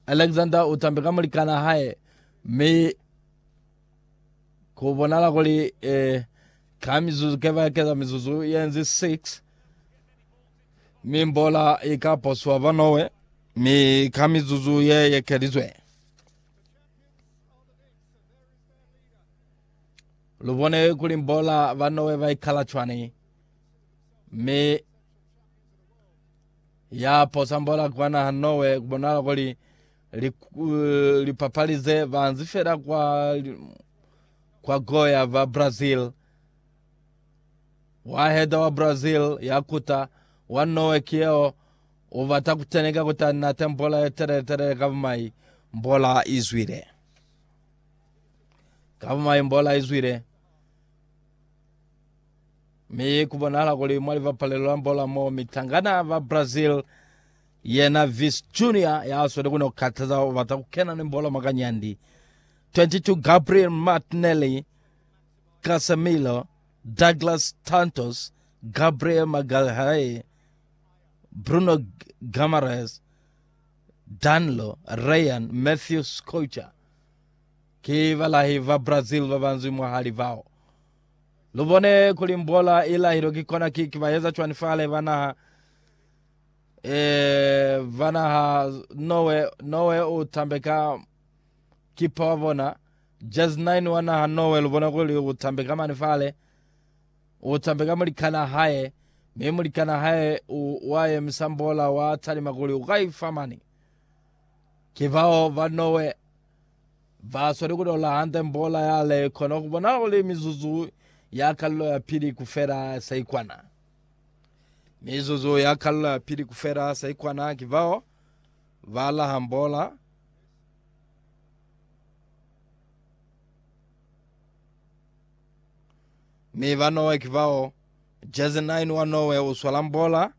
Alexander u tambe ka mulikana hae mi ku bonala kuli eh, ka mizuzu ke ba keza mizuzu yenzi 6 mi mbola i ka poswa ba Norway mi ka mizuzu ye yekelizwe lu bone kuli mbola ba Norway ba ikala cwani mi Ya posa mbola kwa naha Norway kubonala kuli lipapali ze banzi fela kwa kwa goya ba Brazil. Waheda wa Brazil ya kuta wa Norway ki yeo u bata kuteneka kuta nate mbola ye telele telele ka bumai mbola izwile. Ka bumai mbola izwile. Mi ku bonahala kuli mwa libapalelo la mbola mo mitangana ba Brazil, yena Vice Junior ya sweli ku no kataza u bata ku kena ni mbola mwa kanyandi. 22 Gabriel Martinelli, Casemiro, Douglas Santos, Gabriel Magalhae, Bruno Guimaraes, Danilo, Ryan, Matthew Schuster ki balahi ba Brazil ba banzwi mwahali bao. Lu bone kuli mbola i lahilwe ki kona kiki ba eza cwani fale ba naha e ba naha Noe Noe u tambeka kipa wa bona Jazz 9 wa naha Noe lu bona kuli u tambeka mani fale u tambeka mulikana hae mi mulikana hae u wa emisa mbola wa talima kuli u ka ifa mani ki bao ba Noe Ba sweli ku tola hande mbola ya le kona ku bona kuli mizuzu ya kalulo ya pili ku fela sa ikwana. Mizuzu ya kalulo ya pili ku fela sa ikwana ki bao ba laha mbola mi ba Norway ki bao Jersey 9 wa Norway u swala mbola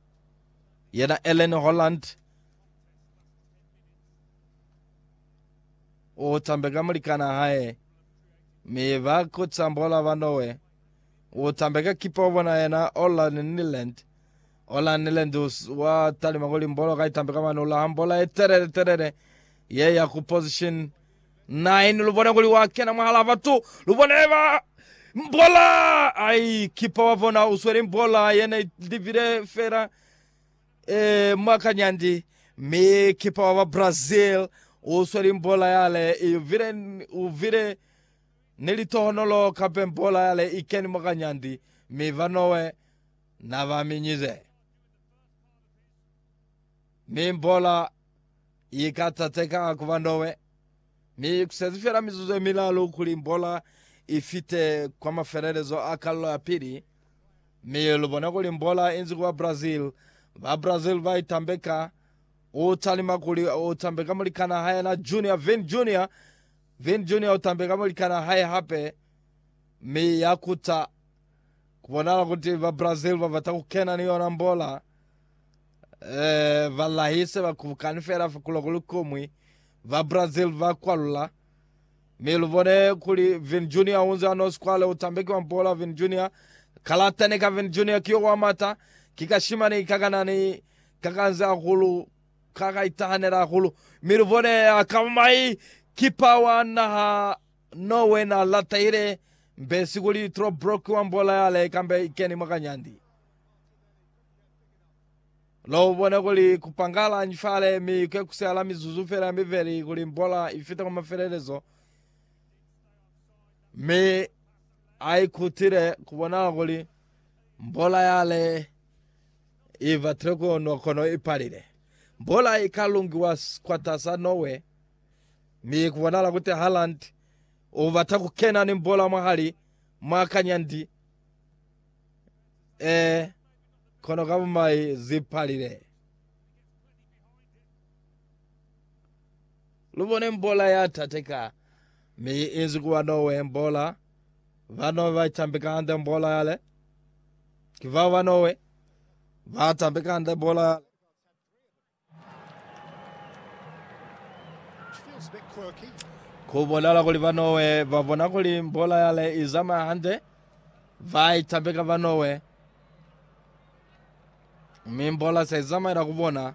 yena Ellen Holland u tambe ka mulikana hae, mi ba ku tambola ba Noe. U tambe ka kipa wa bona yena Orland Niland. Orland Niland wa talima kuli mbolo ka itambe ka mani u laha mbola ye telele telele ye ya ku position 9 lu bone kuli wa kena mwahala batu lu bone ba mbola ai kipa wa bona u sweli mbola yene livile fela Ee, mwa kanyandi, mi kipa wa ba Brazil u sweli mbola yale i vile, u vile ni litohonolo kape mbola yale i keni mwa kanyandi, mi ba Norway na ba minyize. Mi mbola i ka tateka ku ba Norway. Mi kusezi fela mizuzu yemilalu kuli mbola ifite kwa mafelelezo a kalulo ya pili, mi lubone kuli mbola inzi kuba Brazil. Ba Brazil baitambeka, utalima kuli utambe ka mulikana hae na Junior, Vin Junior. Vin Junior utambe ka mulikana hae hape, mi yakuta kubonala kuti ba Brazil babata kukena ni yona mbola Eh, balahi se ba kubukani fela fa kuloko lukumwi, ba Brazil ba kwalula. Mi lubone kuli Vin Junior unze ano squale utambeki wa mpola Vin Junior. Kalata ne ka Vin Junior kiyo wa mata, ki kashimani kakanani kakanze hahulu, kakaitahanela hahulu. Mi lubone akaba mai kipa wa naha Norway na latahile mbesi kuli Trobrook wa mpola yale kambe ikeni mwakanyandi. Lo bone kuli ku pangala nji fale mi ku ekusehala mizuzu fela ya mibeli kuli mbola i fita kwa mafelelezo. Mi a ikutile ku bonala kuli mbola yale i batile ku nwa kono i palile. Mbola i ka lungiwa kwatas'a Norway, mi ku bonala kuti Haaland u bata ku kena ni mbola mwahali mwa kanyandi. Ee, kono ka bumai zi palile. Lu bone mbola ya tate ka, mi i inzi ku ba Nowe, mbola. Ba Nowe ba itambi ka hande mbola yale. Ki bao ba Nowe ba tambi ka hande mbola yale. Ku bonala kuli ba Norway ba bona kuli bola yale i zamaya hande, ba i tambeka ba Norway, mi bola se i zamaela ku bona.